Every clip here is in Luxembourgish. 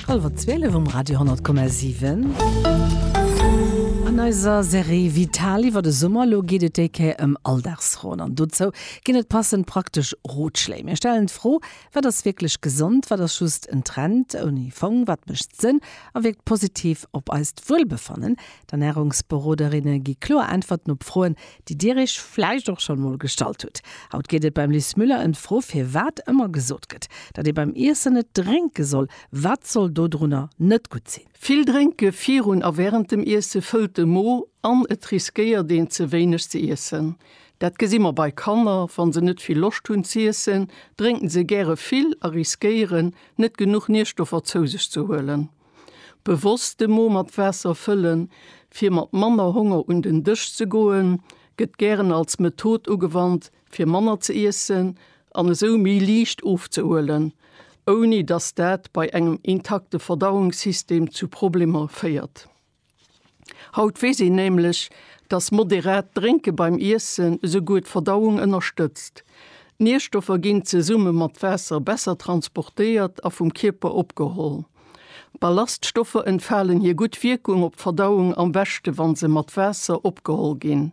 Hallwer 12 um Radio 10,7. An eiser Serie Vital iwwer de Summer elo geet et déi Kéier ëm Alldagsfroen. An dozou ginn et passend praktesch Rotschléi. Mir stellen d'Fro, Wat ass wierklech gesond? Wat ass just en Trend ouni Fong? Wat mécht Sënn a wierkt positiv op eist Wuelbefannen? D'Ernärungsberoderinne gi kloer Äntwerten op Froen, déi Dir Iech vläicht och schonn emol gestallt hutt. Haut geet et beim Liz Müller ëm d'Fro, firwat ëmmer gesot gëtt, datt ee beim Iessen net drénke soll. Wat soll dodrunner net gutt sinn? Vill Drénke virun a wärend dem Iesse fëllt de Mo an et riskéiert een, ze wéineg ze iessen. Dat gesi mer bei Kanner, Wa se net vill Loscht hunn z'iessen, drénke se gäre vill a riskéieren, net genuch Nierstoffer zou sech ze huelen. Bewosst de Mo mat Waasser fëllen, fir mat manner Honger un den Dësch ze goen, gëtt gären als Method ugewannt, fir manner ze iessen an esou méi liicht ofzehuelen, ouni dass dat bei engem intakte Verdauungssystem zu Problemer féiert. Haut weess een nämlech, dass moderat Drénke beim Iessen esouguer d'Verdauung ënnerstëtzt. D'Nierstoffer ginn zesumme mat Waasser besser transportéiert a vum Kierper opgeholl. Ballaststoffer entfalen hir gutt Wierkung op d'Verdauung am beschte wa se mat Waasser opgeholl ginn.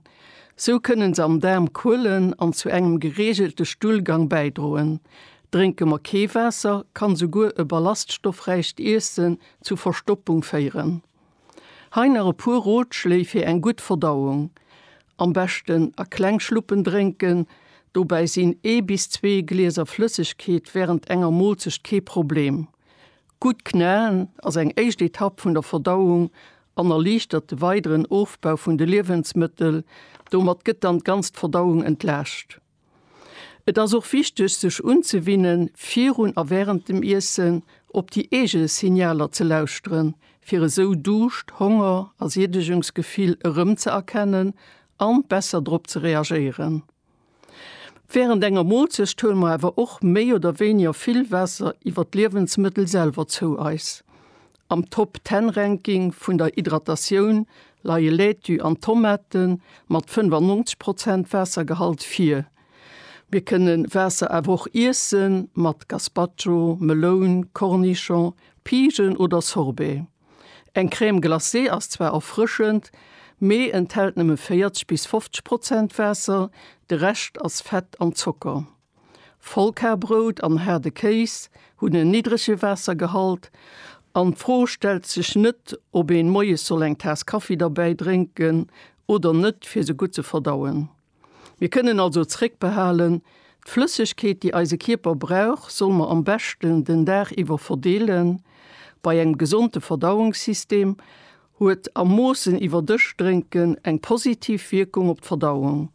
Sou kënne se am Daarm kuelen an zu engem gereegelte Stullgang bäidroen. Drénke mer kee Waasser, kann esouguer e ballaststoffräicht Iesse zu Verstoppung féieren. Hei nach e puer Rotschléi fir eng gutt Verdauung, Am beschten a kleng Schluppen drénken, dobäi sinn ee bis zwee Glieser Flëssegkeet wärend enger Moolzecht kee Problem. Gutt knaen ass eng éischt Etapp vun der Verdauung an erliichtert de weideren Ofbau vun de Liewensmëttel, domat gëtt dann d'ganzt Verdauung entlaascht. Et ass och wichteg sech unzewinnen, virun a während dem Iessen op déi eege Signaler ze lauschteren, fir esou Duuscht, Honger a Siedegungsgefill erëm ze erkennen an besser drop ze reagéieren. Während enger Moolzecht huele mer awer och méi oder wéiniger vill Waasser iwwer d'Liewensmëttel selwer zou eis. Am Top Ten Ranking vun der Hydratatioun leie Laitue an Tomate mat 95 Prozent Waassergehalt vir. Mir kënne Waasser awer och iesse mat Gazpacho, Meloun, Cornichon, Pigen oder Sorbet. Eng Crème glacée ass zwar erfrëschend, mee enthält nëmme 40 bis 50 Prozent Waasser, de Rescht ass Fett an Zocker. Vollkarbrout an haarde Kéis hunn en niddrege Waassergehalt an d'Fro stellt sech net, ob een moies soll eng Taass Kaffi derbäi drénken oder net, fir se gutt ze verdauen. Mir kënnen also zréckbehalen, D'Flëssegkeet, déi eise Kierper brauch, soll mer am beschten den Dag iwwer verdeelen. Bei engem gesonde Verdauungssystem Huet a Moossen iwwer Dësch drénken eng positiv Wierkung op d'Verdauung.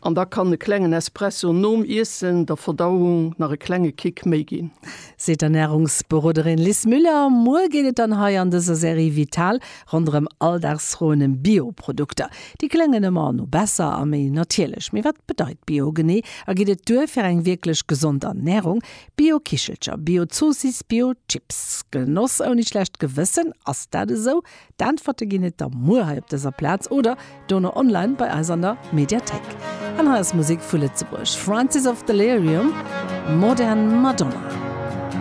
An da kann e klengen Espresso nom Iessen der Verdauung nach e klenge Kick méi ginn. Seet d'Ernärungsberoderin Liz Müller. Muer geet et dann hei an dëser Serie Vital ronderëm Alldagsfroen ëm Bio-Produkter. Déi kléngen ëmmer no besser a méi natierlech. Mee wat bedeit Bio genee a geet et duer fir eng wierklech gesond Ernärung? Bio-Kichelcher, Bio-Zoossiss, Bio-Chips, Genoss ouni schlecht Gewëssen, ass dat esou? D'Äntwerte ginn et da muer hei op dëser Plaz oder dono online bei eis an der Mediathéik. An hei ass Musek vu Lëtzebuerg, Francis of Delirium, Modern Madonna.